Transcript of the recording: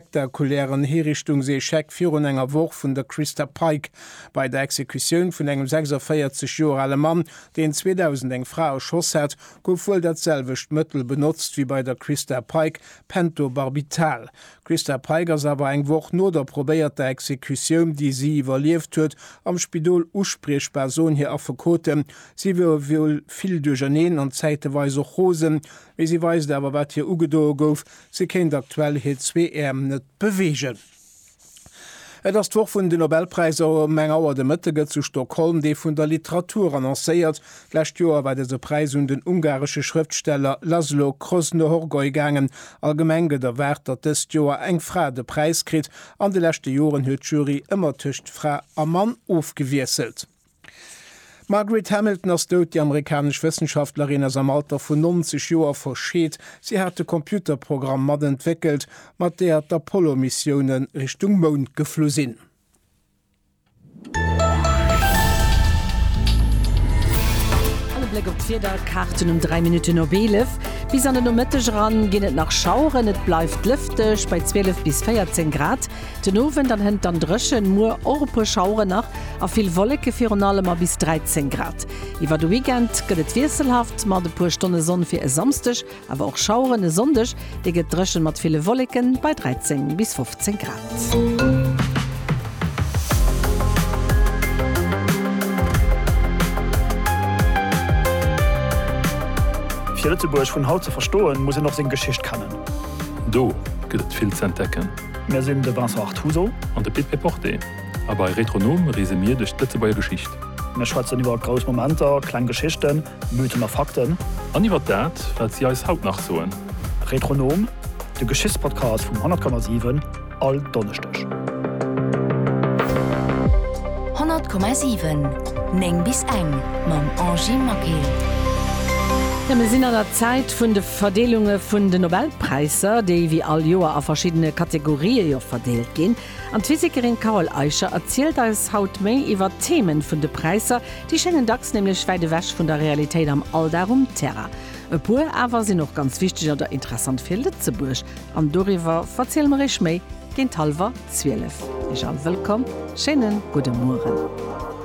spektakulären Hiriichtungsecheck virun enger Woch vun der Christa Pike bei der Exekutioun vun engem 46 Joer ale Mann, deen 2000 eng Fra erschoss hat, gouf wuel dat selwecht Mëttel benotzt wéi bei der Christa Pike, Pentobarbital. D'Christa Pike ass awer eng Woch no der probéierter Exekutioun, déi si iwwerlieft huet, am Spidol uspriechbar, soen hir Affekoten. Si wier wuel vill duercherneen an zäiteweis och rosen, mee si weist awer, wat hir ugedoe gouf. Si kéint aktuell hir zwee Äerm net beweegen. Et ass d'Woch vun den Nobelpräisser. Ëm eng Auer de Mëtte gëtt zu Stockholm dee vun der Literatur annoncéiert. D'lescht Joer war dëse Präis un den ungaresche Schrëftsteller Laszlo Kröznöhorgoy gaangen. Allgemeng gëtt erwaart, datt dëst Joer eng Fra de Präis kritt. An de leschte Joren huet d'Jury ëmmer tëscht Fra a Mann ofgewiesselt. D'Margaret Hamilton ass dout. Déi amerikanesch Wëssenschaftlerin ass am Alter vun 90 Joer verscheet. Si hat de Computerprogramm mat entwéckelt, mat där d'Apollo-Missioune Richtung Mound geflu sinn. An e Bléck op d'Wiederkaarten um 3 Minutten op 11. Bis an den Nomëtteg eran ginn et nach Schaueren, et bleift lëfteg bei 12 bis 14 Grad. Den Owend an hënt dann drëchen, muer och e puer Schaueren nach a vill Wolleke virun allem a bis 13 Grad. Iwwer de Weekend gëtt et wiesselhaft mat e puer Stonne Sonn fir e Samsdeg, awer och Schaueren. E Sonndeg, dee gëtt drëchen mat ville Wolleken bei 13 bis 15 Grad. Fir Lëtzebuerg vun haut ze verstoen, muss een och seng Geschicht kennen. Do gëtt et vill ze entdecken. Mir sinn de Vincent Artuso. An de Pit Péporté. A bei Retronom reese mir duerch d'Lëtzebuerger Geschicht. Mir schwätzen iwwer grouss Momenter, kleng Geschichten, Mythen a Fakten. An iwwer dat, wat si eis haut nach soen. Retronom, de Geschichtspodcast vum 100,7, all Donneschdeg. 100,7 9 bis eng mam Angie Maquet. Ja, mir sinn an der Zäit vun de. Verdeelunge vun de Nobelpräisser, déi wéi all Joer a verschiddene Kategorië jo verdeelt ginn. An d'Physikerin Carole Eicher erzielt eis haut méi iwwer d'Themen vun de Präisser. Déi schéngen dacks nämlech wäit ewech vun der Realitéit am Alldag um Terrain. E puer awer sinn och ganz wichteg oder interessant fir Lëtzebuerg. An doriwwer verziele mer iech méi géint hallwer 12. Iech all wëllkomm, schéinen gudde Mueren.